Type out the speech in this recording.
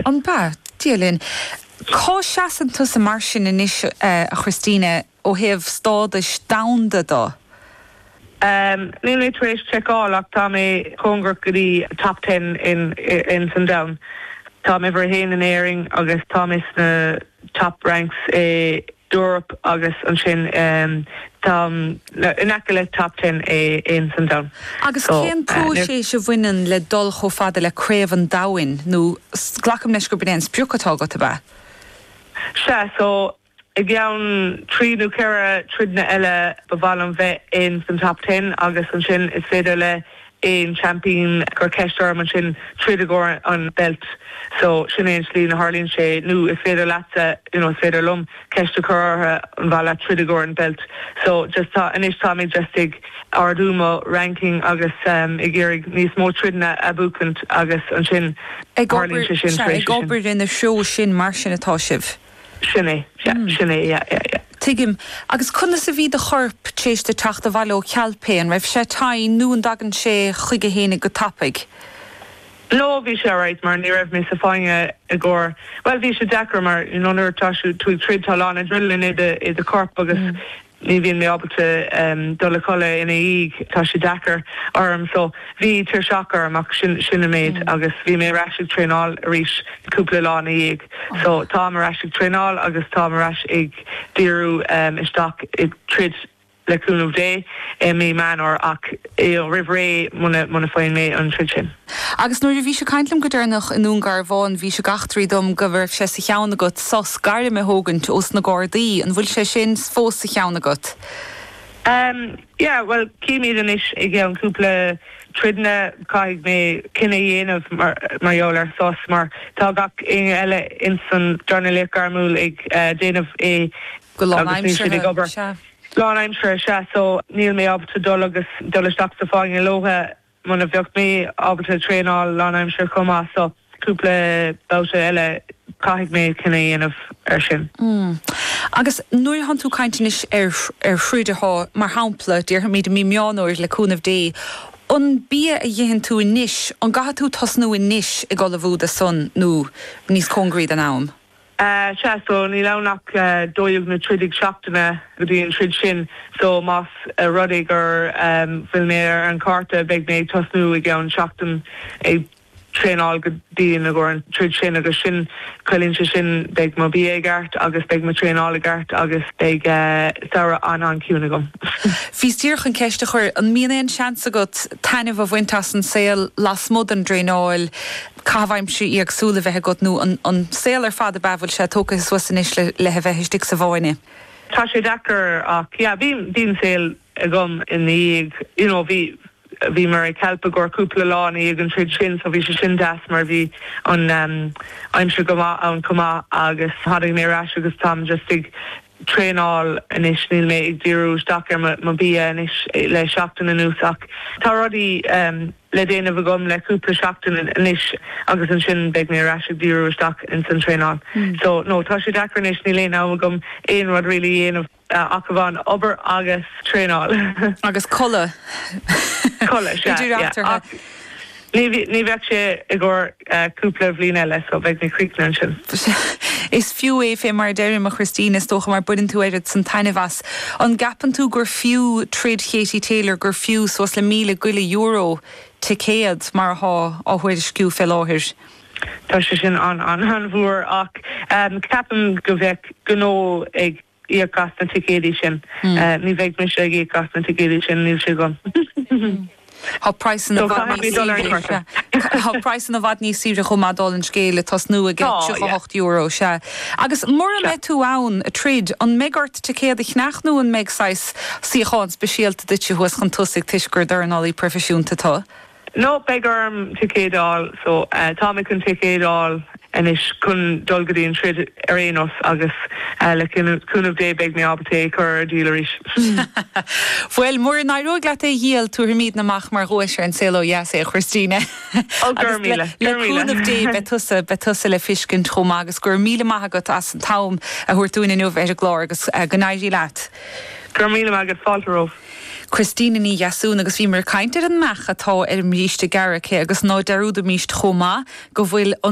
An b'ea? Dia linn. Cá seasann tusa mar sin anois, a Christina, ó thaobh stádais domhanda de? Níl mé tar éis seiceáil ach tá mé cóngarach go dtí top ten in san domhan. Táim uimhir a haon in Éirinn agus táim is na top ranks i. Europe agus ansin táim in aice le Top Ten é in san domhan Agus cén próiseas a bhaineann le dul chomh fada le Craobh an Domhain nó glacaim leis gurb in é an sprioc atá agat, ab ea? Sea, so i gceann trí nó ceithre troideanna eile ba mhaith liom bheith in san Top Ten agus ansin is féidir le aon seaimpín cur ceist orm ansin troid i gcomhair an belt so sin é an slí a tharlaíonn sé nó is féidir leatsa you know is féidir liom ceist a chur orthu an mhaith leat troid i gcomhair an belt so just tá anois tá mé just ag ardú mo ranking agus em ag iarraidh níos mó troideanna a bhuachaint agus ansin ag obair sea ag obair ina threo sin mar sin atá sibh. Sin é, yeah, sin é, yeah, yeah, yeah. Tuigim. Agus conas a bhí do chorp tar éis duit teacht abhaile ó Calpe? An raibh sé tinn nó an dtagann sé chuige fhéinig go tapaidh? No, bhí sé alright mar ní raibh mé sa fáinne i gcomhair, bhuel, bhí sé deacair mar, you know, nuair atá tú ag troid tá a lán adrenaline i do chorp agus ní bhíonn mé ábalta dul a chodladh ina dhiaidh, tá sé deacair orm so bhí tuirseach orm ach sin sin an méid agus bhí mé ar ais ag traenáil arís cúpla lá ina dhiaidh so táim ar ais ag traenáil agus táim ar ais ag díriú isteach ar troid le cúnamh Dé i mí Meán Fhómhair ach roimh ré muna muna faigheann mé an troid sin. Agus nuair a bhís ag caint liom go deireanach i nDún Garbhán, bhís ag eachtraí dom go raibh sé sa cheann agat sos gairme a thógaint ós na Gardaí. An bhfuil sé sin fós sa cheann agat? Yeah, bhuel, címid anois i gceann cúpla troideanna. Caithfidh mé cinneadh a dhéanamh mar gheall ar sos mar tá gach éinne eile ins an dornálaíocht gairmiúil ag déanamh é agus níl siad ag obair. Go lánaimseartha, sea. Lán aimseartha, sea, so níl mé ábalta dul agus dul isteach sa fáinne leothu. Muna bheadh mé ábalta traenáil lánaimsire chomh maith so cúpla babhta eile caithfidh mé cinneadh a dhéanamh ar sin. Mm. Agus nuair a thánn tú ag caint anois ar ar throid a shá, mar shampla, déarfaimid i mí Meán Fhómhair le cúnamh Dé, an bia a dh'itheann tú anois, an gcaithfidh tú tosnú anois ag ullmhú dó san nó níos cóngaraí don am? Sea, so níl ann ach dó dhéag nó trí déag seachtaine go dtí an troid sin, so más rud é gur bhfuil mé ar an chárta beidh mé ag tosnú i gceann seachtain ag traenáil go dtí an troid sin agus sin ciallaíonn sé sin beidh mo bia i gceart agus beidh mo traenáil i gceart agus beidh samhradh an-an-chiúin agam. Bhíos díreach chun ceist a chur, an mbíonn aon seans agat taitneamh a bhaint as an saol lasmuigh den dtraenáil? caitheamh aimsire éagsúil a bheith agat nó an saol ar fad ab ea bhfuil sé tógtha suas anois le a bheith istigh sa bhfáinne? Tá sé deacair ach yeah bhí bhí an saol agam ina dhiaidh you know bhí bhí mé i Calpe i gcomhair cúpla lá ina dhiaidh an troid sin so bhí sé sin deas mar bhí an aimsir go maith ann chomh maith agus tháinig mé ar ais agus táim just ag traenáil anois, níl mé ag díriú isteach ar mo bia anois le seachtain anuas ach tá rudaí le déanamh agam le cúpla seachtain anois agus ansin beidh mé ar ais ag díriú isteach ins an traenáil. So, no, tá sé deacair anois, níl aon am agam aon rud really a dhéanamh ach amháin obair agus traenáil. Agus codladh. Codladh, sea, yeah. Ní bheadh sé i gcóir cúpla bliain eile so beidh mé críochnaithe ansin. Is fiú é fé mar a deirim, a Christina, is dócha, mar baineann tú oiread san taitneamh as. An gceapann tú gur fiú troid Katie Taylor gur fiú suas le míle go leith euro, ticéad, mar athá á thuairisciú fé láthair? Tá sé sin an-an-an-mhór ach ceapaim go bheadh gnó ag íoc as na ticéidí sin. Ní bheidh mise ag íoc as na ticéidí sin, níl sé agam. Tá praghsanna i bhfad níos saoire, sea. Tá praghsanna i bhfad níos saoire chomh maith, dála an scéil, ag tosnú ag €38, sea. Agus mura mbeidh tú ann ag troid, an mbeidh ort ticéad a cheannach nó an mbeidh saghas suíochán speisialta duitse thuas chun tosaigh toisc gur dornálaí proifisiúnta tú? No, beidh orm ticéad a fháil so tá mé chun ticéad a fháil anois chun dul go dtí an troid ar aon nós agus le cúnamh Dé beidh mé ábalta é a chur ar díol arís. Bhuel, mura n-éireoidh leat é a dhíol, tabharfaimidne amach mar dhuais ar An Saol Ó Dheas é, a Christina. Ó, go raibh míle, go raibh míle. Agus le cúnamh Dé beidh tusa, beidh tusa le feiscint chomh maith agus go raibh míle maith agat as an t-am a thabhairt dúinn inniu ar an gclár agus go n-éirí leat. Go raibh míle maith agat, fáilte romhaibh. Christina Ní Dheasúna, Agus bhíomar ag caint ar an mbeach atá ar an mbríste gearr aici agus ná dearúdaimíst chomh maith go bhfuil an.